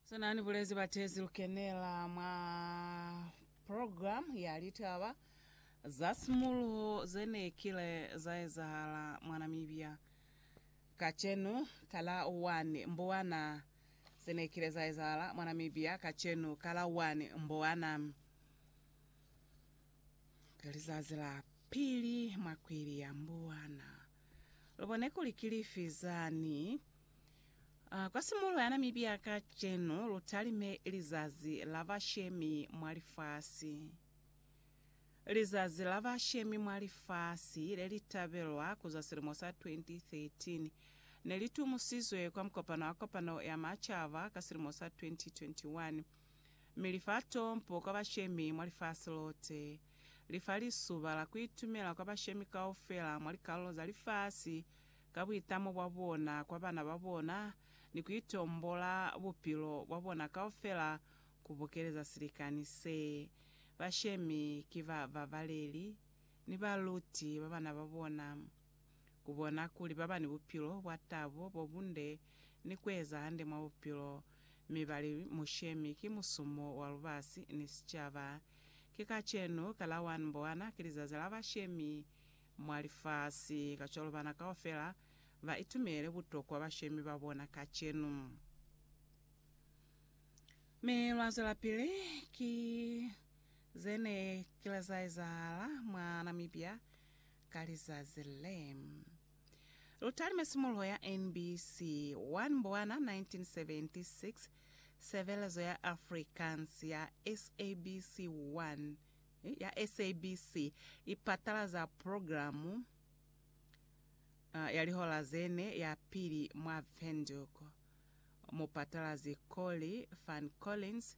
Sina ni bulezi batezi lukenela mwa program ya litaba za simuluho zene kile za ezahala mwa Namibia kacenu kala 1 Mbowana zene kile za ezahala mwa Namibia kacenu kala 1 Mbowana kalizazi la pili mwa kwili ya Mbowana. Lu bone kuli ki lifi zani. A Kwa simulo ya Namibia kacenu, lu talime Lizazi la Bashemi mwa Lifasi. Lizazi la Bashemi mwa Lifasi, le li tabelwa ku zwa silimo sa 2013, ne li tumusizwe kwa mukopano wa Kopano ya Macaba ka silimo sa 2021, mi li fa tompo kwa bashemi mwa lifasi lote. li fa lisuba la ku itumela kwa bashemi kaufela mwa likalulo za lifasi ka buitamo bwa bona kwa bana ba bona ni ku itombola bupilo bwa bona kaufela ku bokeleza silikani se. Bashemi ki bababaleli ni baluti ba bana ba bona. ku bona kuli ba ba ni bupilo bwa tabo, bo bunde, ni ku eza hande mwa bupilo, mi ba li mushemi, ki musumo wa lubasi ni sicaba. Ki kacenu, ka la 1 Mbwana, ki lizazi la bashemi mwa lifasi. Kacwalo bana kaufela ba itumele butokwa bashemi ba bona kacenu. Mi lwa zwelapili. Ki ze ne ki la za ezahala mwa Namibia, ka lizazi le. Lu talime simuluho ya NBC 1 Mbwana 1976, Sebelezo ya Afrikaans ya SABC 1 ya SABC i patalaza programu ya lihola ze ne ya pili mwa Windhoek. Mupatalazi Colly Van Collins.